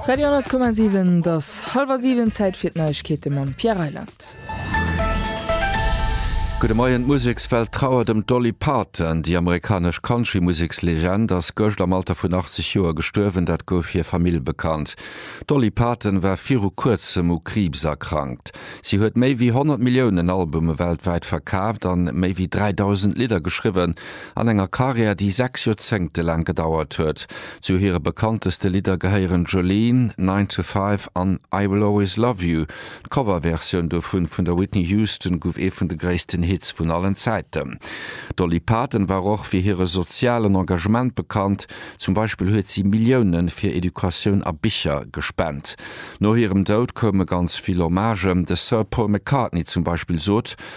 Radio 10,7 Et ass hallwer siwen, Zäit fir d'Neiegkeete mam Pierre Reyland. Gudde Moien, D'Musekswelt trauert ëm d'Dolly Parton. Déi amerikanesch Countrymusekslegend ass gëscht am Alter vun 80 Joer gestuerwen, dat gouf hir Famill bekannt. D'Dolly Parton war viru Kuerzem u Kriibs erkrankt. Si huet méi wéi 100 Milliounen Albume weltwäit verkaaft an méi wéi 3.000 Lidder geschriwwen. An enger Karriär, déi sechs Joerzéngte laang gedauert huet. Zu hire bekannteste Lidder gehéieren Jolene, Nine to Five an I Will Always Love You. D'Coverversioun dovun vun der Whitney Houston gouf ee vun de gréissten Hits vun allen Zäiten. D'Dolly Parton war och fir hire sozialen Engagement bekannt. Zum Beispill huet si Millioune fir Educatioun a Bicher gespent. No hirem Doud koume ganz vill Hommagen. De Sir Paul McCartney zum Beispill sot,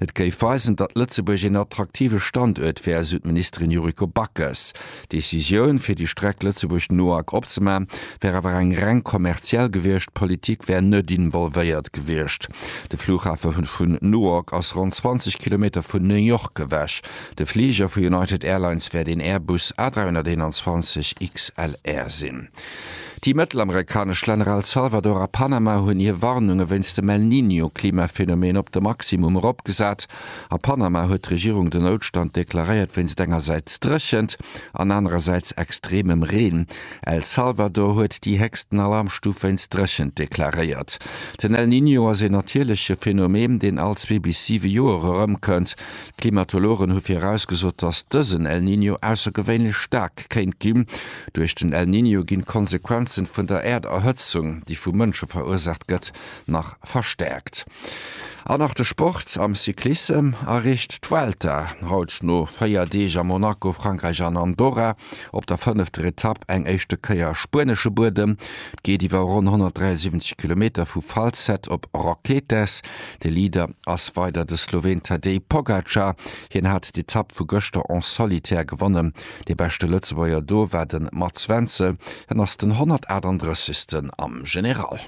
Et géif weisen, datt Lëtzebuerg een attraktive Standuert wär, esou d'Ministerin Yuriko Backes. D'Decisioun, fir déi Streck Lëtzebuerg-Nohak opzemaachen, wär awer eng reng kommerziell gewiescht, d'Politik wär net involvéiert gewiescht. De Flughafe vun Nohak ass ronn 20 Kilometer vun New York ewech. De Fliger vu United Airlines wär den Airbus A321 XLR sinn. Déi mëttelamerikanesch Länner El Salvador a Panama hunn hir Warnunge wéinst dem El Niño-Klimaphenomen op de Maximum eropgesat. A Panama huet d'Regierung den Noutstand deklaréiert wéinst engersäits Dréchent an anerersäits extremem Reen. El Salvador huet déi héchsten Alarmstuf wéinst Dréchent deklaréiert. Den El Niño ass een natierleche Phenomen, deen all zwee bis siwe Joer erëmkënnt. Klimatologen hu virausgesot, datt dësen El Niño aussergewéinlech staark kéint ginn. Duerch den El Niño ginn d'Konsequenzen vun der Äerderhëtzung, déi vu Mënsche verursaacht gëtt, nach verstäerkt. An nach de Sport, Am Cyclissem erreecht d'Vuelta haut no 4 Deeg a Monaco, Frankräich an Andorra op der fënnefter Etapp eng éischte Kéier spuenesche Buedem. Et geet iwwer ronn 173 Kilometer vu Falset op Roquetes. De Leader ass weider de Sloween Tadej Pogacar. Hien hat d'Etapp vu gëschter en solitaire gewonnen. Dee beschte Lëtzebuerger do war de Mats Wenzel. Hien ass den 138. am General.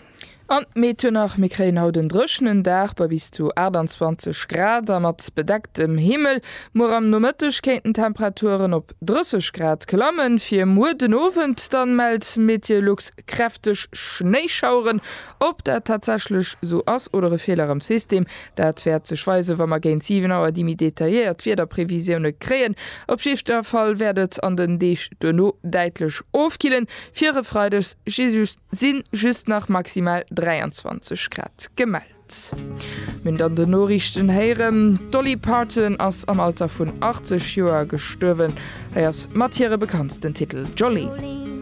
An d'Meedhöner, Mir kréien haut en dréchenen Dag bei bis zu 28 Grad a mat bedecktem Himmel. Muer am Nomëtteg kéinten d'Temperaturen op 30 Grad klammen. Fir muer den Owend da mellt Meteolux kräfteg Schnéischaueren. Ob dat tatsächlech sou ass oder e Feeler am System, dat wäert sech weisen, wa mer géint 7 Auer déi méi detailléiert Wiederprevisioune kréien. Op jiddwer Fall wäert et an den Deeg duerno däitlech ofkillen. Fir e Freides si just nach maximal 23 Grad gemellt. Mir hunn et an den Noriichten héieren, D'Dolly Parton ass am Alter vun 80 Joer gestuerwen. Hei ass mat hire bekanntsten Titel Jolene.